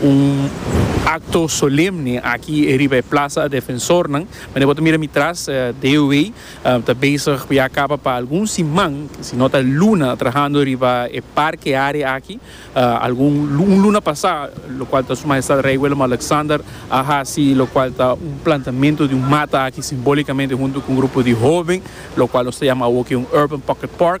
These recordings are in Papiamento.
Un acto solemne aki e riba e plaza a defensornan. Mende bo ta mira mi tras, DOW ta bezig cu ya caba pa algun siman, si no ta luna, trahando riba e parke area aki. Algun, un luna pasa, locual ta Su Majestad Rey Willem-Alexander a haci locual ta un plantamento di un mata aki simbolicamente hunto cu un grupo di hoben, locual nos ta yama awo aki un Urban Pocket Park.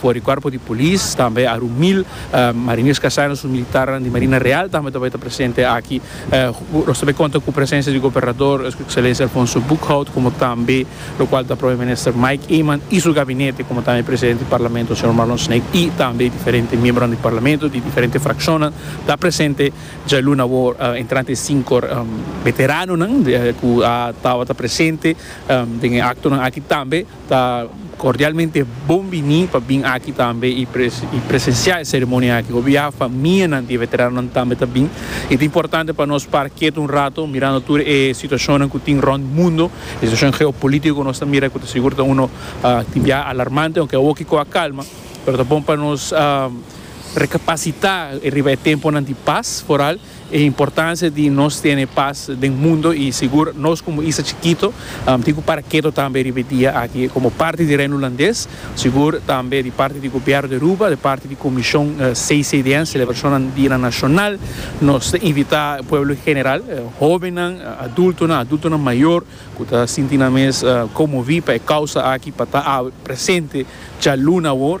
For di cuerpo di polis tambe a ru mil mariniers casanos su militarnan di Marina Real tambe ta bay ta presente aki. Nos ta bay conta cu presencia di Gobernador Su Excelencia Alfonso Boekhout como tambe lo cual ta Prome Minister Mike Eman y su gabinete como tambe Presidente di Parlamento Señor Marlon Snape y tambe diferente miembronan di Parlamento di diferente fraccionnan ta presente djalu na wor entrante e cinco veteranonan cu a tabata presente den e actonan aki tambe. Ta cordialmente bon bini pa bin aki tambe y presencia e ceremonia aki. Obia famianan di e veteranonan tambe ta bin y ta importante pa nos para ketu un rato mirando tur e situacionnan cu tin rond mundo, e situacion geopolitico cu nos ta mira cu ta sigur ta uno tin bia alarmante aunke awo kico a calma pero ta bon pa nos recapacita riba e temponan di paz foral. E importancia di nos tene paz den mundo y sigur nos como isla chikito tin cu para keto tambe riba e dia aki. Como parti di Reino Hulandes, sigur tambe di parti di Gobierno di Aruba, di parti di Comision CCDN, Celebracionnan Dianan Nacional, nos ta invita pueblo en general, hobennan, adultonan, adultonan mayor cu ta sinti nan mes conmovi pa e causa aki pa ta awe presente djaluna awor.